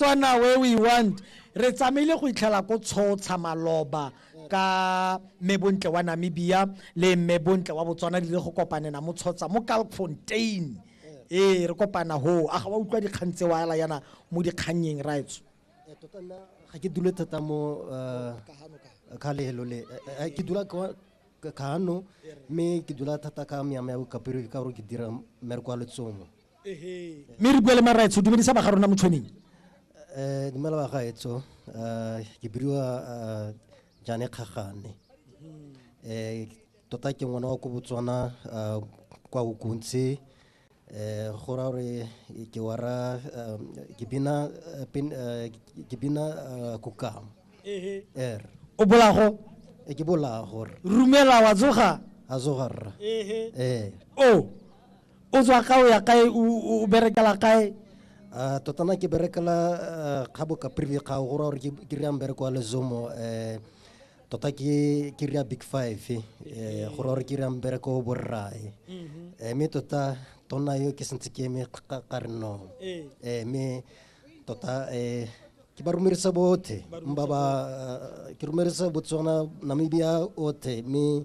Botswana where we want. Re tsamaile go itlhela ko tshotsha maloba ka mme bontle wa Namibia le mme bontle wa Botswana dile go kopanena mo tshotsa mo Kalkfontein. Ee re kopana ho a ga wa utlwa dikgang tse wa ela yana mo dikgannyeng raetso. Eh, tota nna ga ke dule thata mo eh, ka lehelo le eh, ke dula ka kano mme ke dula thata ka meama ya bokapere ka gore ke dira mmereko wa letsomo mme re bua le maraetso dumedisa baga rona motshweneng um dumela bagaetso um ke bidiwa um jane kgagane um tota ke ngwana wa ko botswana um kwa okontse um go ra gore ke wara ke bina ke bina kokamo er o bolago ke bolago rumela wa tsoga a tsoga rra ee o o tswa kae o ya kae o berekela kae um tota na ke berekela eh, kgabo kaprili kgao go ra gore ke rea mbereko wa lezomo um tota ke ke rea big five um go ra gore ke rea mbereko o borrae um mhm. mme tota tona yo ke sentse ke eme ka re no mme tota um ke ba rumerisa bothe mba ba ke rumerisa botswana namibia othe mme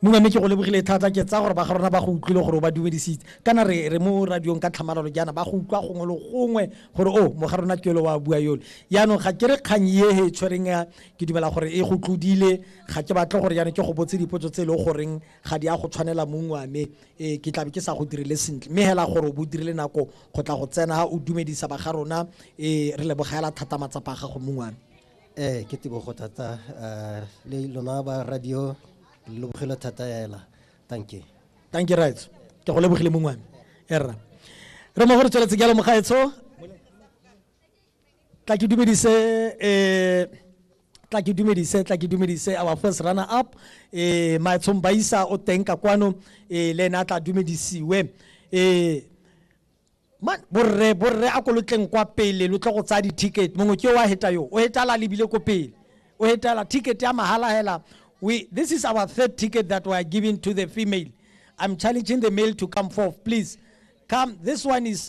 Munya, mme ke go lebogile thata. Ke tsaya gore ba ga rona ba go utlwile gore o ba dumedisitse. Kana re re mo radiong ka tlhamalalo jaana ba go utlwa gongwe le gongwe gore o mo ga rona ke yole wa bua yole. Jaanong ga ke re kgang ye he e tshwereng ya ke dumela gore e go tlodile. Ga ke batle gore jaanong ke go botse dipotso tse e leng goreng ga di a go tshwanela Munya, mme e ke tlabe ke sa go direle sentle. Mme hela gore o bo o dirile nako go tla go tsena o dumedisa ba ga rona e re lebogela thata matsapa a gago Munya. ee ke tebogo thata uh, le lona ba radio le lobogelo thata ela thank you thank you right ke go lebogile mongwane erra re mo gore tsweletse jalo mogaetsho tla ke dumedise eh tla ke dumedise tla ke dumedise our first runner up eh maetshong baisa o teng ka kwano eh le ena tla dumedisiwe eh Man, borre borre a ko lo tleng kwa pele lo tle go tsaya di-ticket mongwe ke o a heta yo o hetala lebile ko pele o hetala ticket ya mahala hela we this is our third ticket that we are giving to the female i'm challenging the male to come forth please come this one is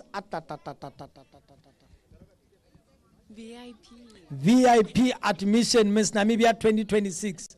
vip admission miss namibia 2026